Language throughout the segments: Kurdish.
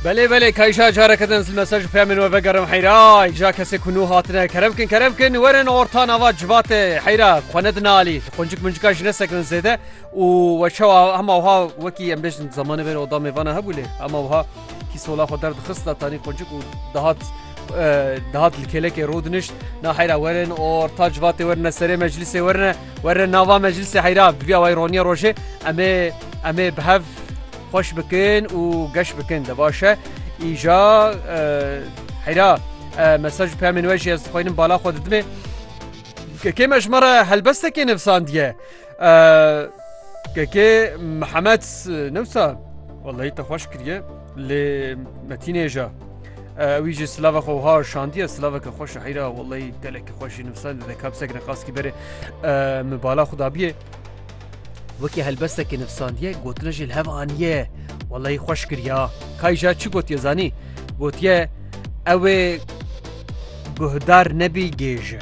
Belê belê kayşa careke din li mesaj peyamên we vegerim heyra ja kesê ku nû hatine kerem kin kerem kin werin orta nava civatê heyra xwe ne dinalî qoncik mincika ji nesekirin zêde û we çewa hema wiha wekî em bêjin zamanê ver oda mêvana hebû lê hema wiha kî sola xwe derdixista tanî qoncik û dihat dihat li kêlekê rû dinişt na heyra werin orta civatê werin serê meclisê werine werin nava meclisê heyra biviya way roniya rojê em ê em ê bi hev Xweş bikin û geş bikin de baş e. Îja heyra mesaj pemên we jî ez dixwînim bala xwe didimê. Kekê me ji me re helbestekê nivsandiye. Kekê Mihemed newsa Wallahî te xweş kiriye lê metînêja. Wî jî silava xwe ha şandiye silaveke xweş heyra Wallahî gelekî xweşî nivsan dide kapsek ne qaskî berê min bala xudabiye. Wekî helbestekî nivsandiye gotina jê li hev aniye. Wellahî xweş kiriya. Kayja çi gotiye zanî? Gotiye ewê guhdar nebî gêj e.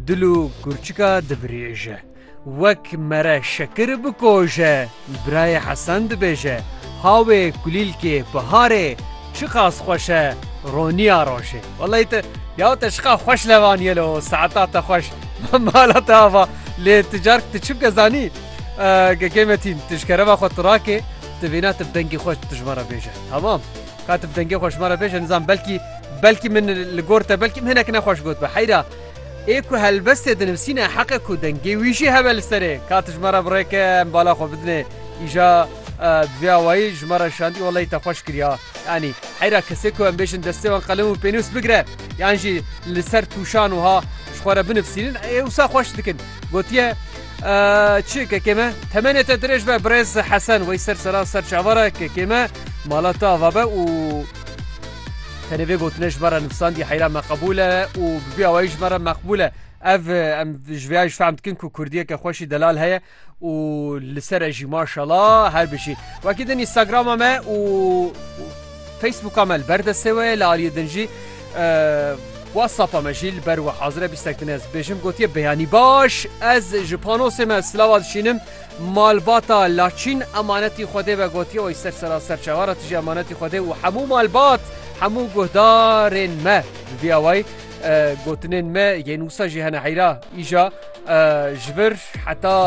Dil û kurçika divirêje. Wek mere şekir bikoje. Birayê Hesen dibêje hawê kulîlkê biharê çiqas xweş e roniya rojê. Wellay te ya te şiqa xweş levaniye lo saeta te xweş mala te ava lê tu cark tu çimke zanî gekê metîn tu ji kerema xwe tu rakê tu vêna tu bi dengê xwe tu ji me re bêje hemam ka tu bi dengê xwe ji me re bêje nizan belkî belkî min li gor te belkî min hinek nexweş got be heyra ê ku helbestê dinivîsîne heqe ku dengê wî jî hebe li serê ka tu ji me re birêke em bala xwe bidinê îja bi vê awayî ji me re şandî wellay te xweş kiriya Yanî heyra kesê ku em bêjin destê wan qelem û pênûs bigire yan jî li ser tûşan wiha ji xwe re binivîsînin ê wisa xweş dikin. Gotiye Çi kekê me temenê te dirêj be birêz Hesen wey ser sera ser çavara kekê me mala te ava be û tenê vê gotine ji me re nivîsandî heyra me qebûl e û bi vî awayî ji me re meqbûl e. Ev em ji vêya jî fehm dikin ku kurdiyeke xweşî delal heye. û li ser e jî maşala her bijî wekî din Instagrama me û Facebooka me li ber destê we li aliyê din jî WhatsAppa me jî li ber we hazire bîstek din ez bêjim gotiye beyanî baş ez ji panosê me silava dişînim malbata laçîn emanetî xwedê ve gotiye wê ser sera ser çewara tijî emanetî xwedê û hemû malbat hemû guhdarên me bi vî awayî gotinên me yên wisa jî hene heyra îja ji vir heta